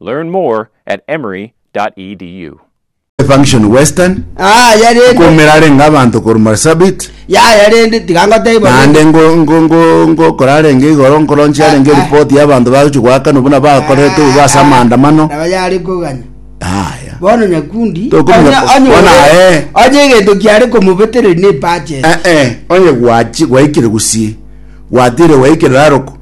Learn more at emory.edu. Function Western, Yaya rende, nkoumera arenge abanto korwa Marsabit, yaya rende, tiga ngotebwa naende rende. ngo- ngo- ngo- ngokora arenge igoro nkoronchia arenge Ah, ah. eripoti y'abanto bagochia goakanwa buna bakorete obo ase amaandamano. Nabo yare koganya. Aya. Bono nyakundi. Tokomenya- onye- onye- Bona, onye- eh. Onye egento kiare komobetereri ne purchase. Eh, eh, onye gwachi gwaikire gusii gwatire gwaikire raroko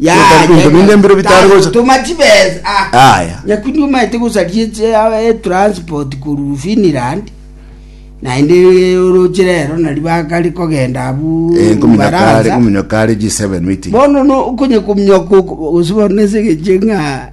Gotari binto binde mbire bitare gocha. Tuma chibesa. Ah. Aya. Nyakundi omaete gosaria eche eh, eh, transport korwa Finland. Naende eh, oroche rero nari bakare kogenda abu Eh, nkominyo kare, Ufaransa. nkominyo kare G7 meeting. Bono no okonye kominyoka gose bono ase egeche ng'a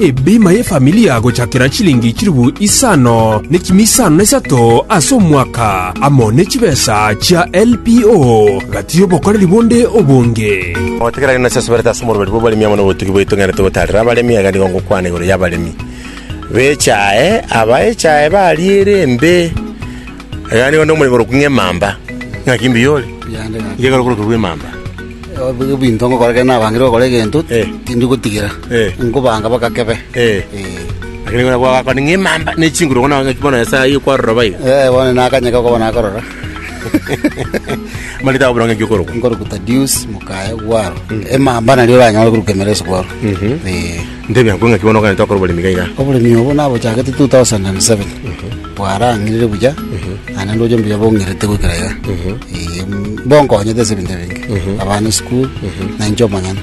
Ebima y'efamilia gochakera chilingi chilifu isano ne chimi isano na isato ase omwaka, amo ne chibesa chia LPO, gati y'obokoreri bonde obonge. Gotegerera ng'a nase asuberete ase omoruberu bw'abaremi amo nobotugi bwaito ng'a togotaarera abaremi, iga nigo ngokwana igoro y'abaremi b'echae, aba echae bariire embe. Agani onde omorembe korokwa ng'emamba. Ng'aki mbuya ore! Inche ekero okorokigwa emamba. Ebinto ngokora ekero nabangire gokora egento, tindi gotigera, nkobanga mpaka kebe. Lakini ekero gwakora ng'emamba ne chinguru okona ng'aki bono Nyasae aye kwarora boigo. Ee, bono nakanyeka okoba nakorora. Mani takobora ng'aki okorokwa. Nkorokwa Tadius Mukaya Ogwaro. Emamba nario oranyore korokwa Emereso kwabo. Ee. Ntebia ng'aki bono okogenda gokora oboremi iga iga. Oboremi obo nabochagete 2007. Bwarang'irire buya, naende ndoche mbuya bong'irete goikera iga. Ee, mbokonyete ase ebinto ebinge, abana esukuru, na inche omonyene.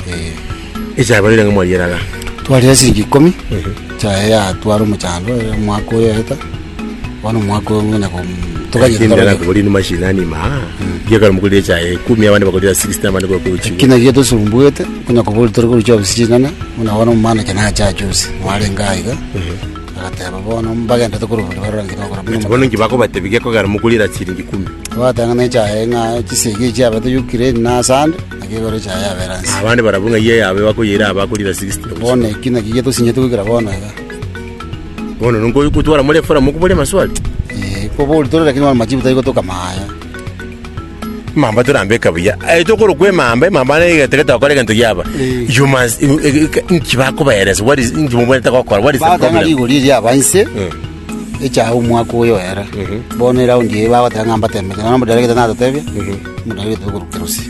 Ee. Echabarire ng'a mwariera iga. Twarire siringi ikomi, echaye yatwara omochando ere omwaka oyo oeta, bono omwaka oyo ng'ina kom- toganyete Lakini toganyete. ndakakobori inwe mashinani ma gekero mokorire echae ekumi abande bakorire 60 abande bakore Ki ochigo naki getosumbuete, onye kobori tore korusia obisi chinene, buna bono omomalachi nache achusi, narenge aiga. Bagateeba, Bono mbagenderete korwa boria barorenge togokora buna Naki bono inki bakobatebia gekogera mokure era chiringi ikumu? Twateng'ena echaye ng'a chisegi echi chiabe toyio Kireni na Asandi, naki igoro echaye yabeera nse. Abande barabwo ng'ai eyabe bakoyeira aba bakure era sigisi na Bono gochia. eki nakio getosinyeti goikera bono iga. Bono nonkoigwa twara more Efraimu okobori amaswali? Ee, kobori tore, lakini bono machiibu tari gotoka maya. Emamba torambeka buya. Aye tokorokwa emamba, emamba ne egento getokora egento giaba. Eh. You must you- e- e- e- inki bakobaeresa, what is inki mobwete gokora, what is the batanga problem? rigori eria aba inse Mm. echaga omwaka oyo era bono eraundi eye bagoteba ng'a mbatemete nono omodaregete natatebia omodaregete okorukera ose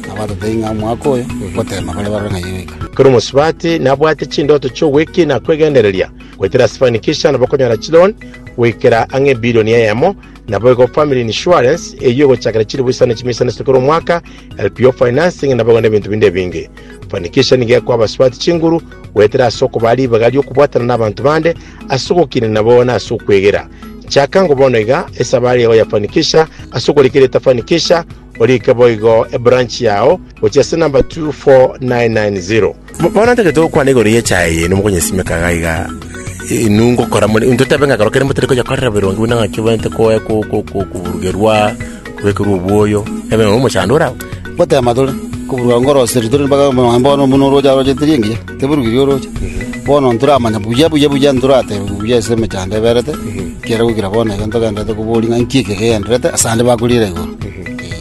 nabatatebia ng'a omwaka oyo gotema bare barore ng'a yeweka Kero mosubati nabwate chindoto chi'ogweki na kwegendereria goetera Sifanikisha nabo konyora chilon goikera ang'e ebilioni eyemo Naboigo family insurance, eyio egochakera chilifu isano chimia isano ase kera omwaka, LPO financing, naboigo nebinto binde ebinge. Fanikisha nigo ekoa abasubati chinguru goetera ase okobaa ribaga ri'okobwatana nabanto bande, ase ogokiina nabo na ase okwegera. Chaka ngo bono iga esabari yao ya Fanikisha ase okorika erieta Fanikisha, orike boigo ebranch yao gochia ase number 24990. Bono ntagete gokwana igoro y'echaye eye, nomokonyesimeka iga iga, inwe ngokora more, intwe tobe ng'a ekero kende motari konyekorera bironge buna ng'a kebwate koe- ko- ko- ko- koburugerwa, kobekerwa obwoyo, ebe nonya omochando ore agwo. Gotema tore, koburuka ngoroseri tore mpaka mambia bono buna oroche arochete riengiya, teburukirie oroche. Bono ntoramanya buya buya buya ntorateba buya ase emechando eberete, ekiagera goikera bono iga ntogenderete koboria ng'a nki eke kegendererete asande bakoriera igoro.